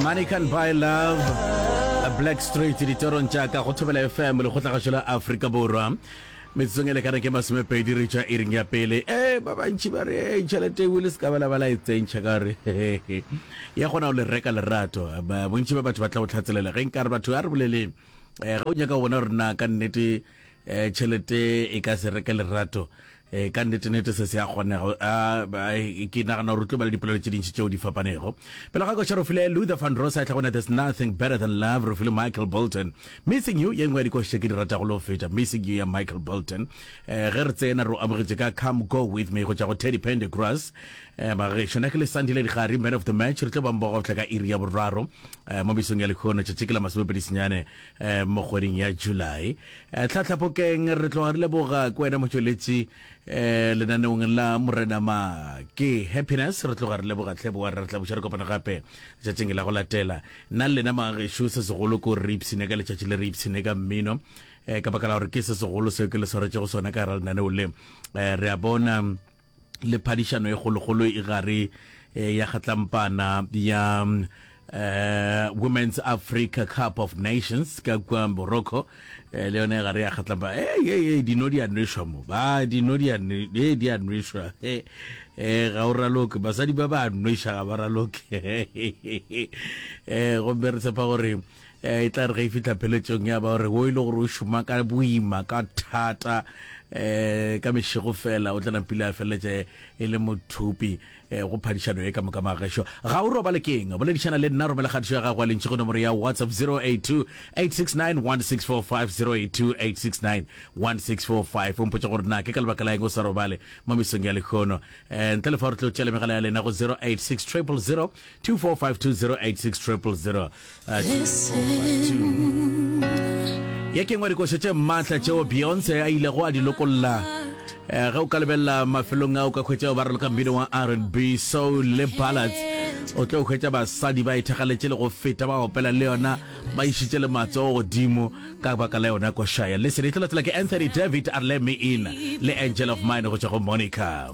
Money can buy love Black Street ditorong tša ka go thobela FM le kgotlagašo la Afrika Borwa metsotsong e lekana ke masomepedi re tšwa iring ya pele e ba bantši ba re e tšhelete eo le se ka bela ba la e tsentšha ka gore ya kgona go le reka lerato bontši ba batho ba tla go tlhatselela ge nkare batho a re boleleng um ga o nyaka go bona gore na ka nnete um tšhelete e ka se reke lerato E, ka nnete-nete se se a kgonega ke nagana gore o tlo ba le dipolelo tše dintši tšeo di fapanego pele ga koša rofile luther van rosa e tlhagone there's nothing better than love rofile michael bolton missing you ye nngwe ya dikoša tše ke di ratago le go feta missing you ya michael bolton um ge re tsena re o amogetše ka come go with me go tšwa go teddy pende grass um bagešo na ke le sandile digare man of the match re tlo bang bogotlha ka iri ya boraro um mo mesong ya lekgono tšatši ke la masomepedi senyane mo kgweding ya July. Tlhahlapokeng re tloga re leboga ke wena motšweletši lenaneong la Morena Ma ke Happiness. Re tloga re leboga tlhe boa re tla buša re kopana gape letšatšing la go latela. Nna le lena magešu se segolo ko re ipshine ka letšatši le re ipshine ka mmino ka baka la gore ke se segolo seo ke le swaretšego sona ka gara lenaneo le re a bona le phadišano e kgolokgolo e gare ya kgatlampana ya uh, Women's Africa Cup of Nations ka kwa Morocco eh, le yone gare ya kgatlamba hey, hey, hey, dino di a nwešwa mo ba dino di a hey, di a nwešwa hey, eh, ga o raloke basadi ba ba nwešwa ga ba raloke eh, gomme re tshepa gore e tla re ge e fihla pheletsong ya ba gore wo e le gore o šoma ka boima ka thata um ka mešego fela o tla napile a feleletse e le mothupi um go phadišano e ka moka magešo ga o robale keng boledišana le nna romela kgatišo ya gago a lentšhi go nomoro ya whatsapp 082 869 1645 082 869 1645 o mpotsa gore na ke ka lebaka la eng o sa robale mo mesong ya lekgono um ntle le fa gore tlo tšele megala ya lena go 086 000 2452086000 ye kengwa dikošo tše mmatla tšeo beyonce a ilego a di lokolla eh, ge o ka lebelela mafelong a o ka hwetšago ba raloka mmino wa rnb soul le ballads o tlo hwetša basadi ba ithagaletše le go feta ba opela le yona ba išitše le matsogo godimo ka baka la yona košaya listen e tlo latela ke anthony david arleme in le angel of mine go tšwa go monica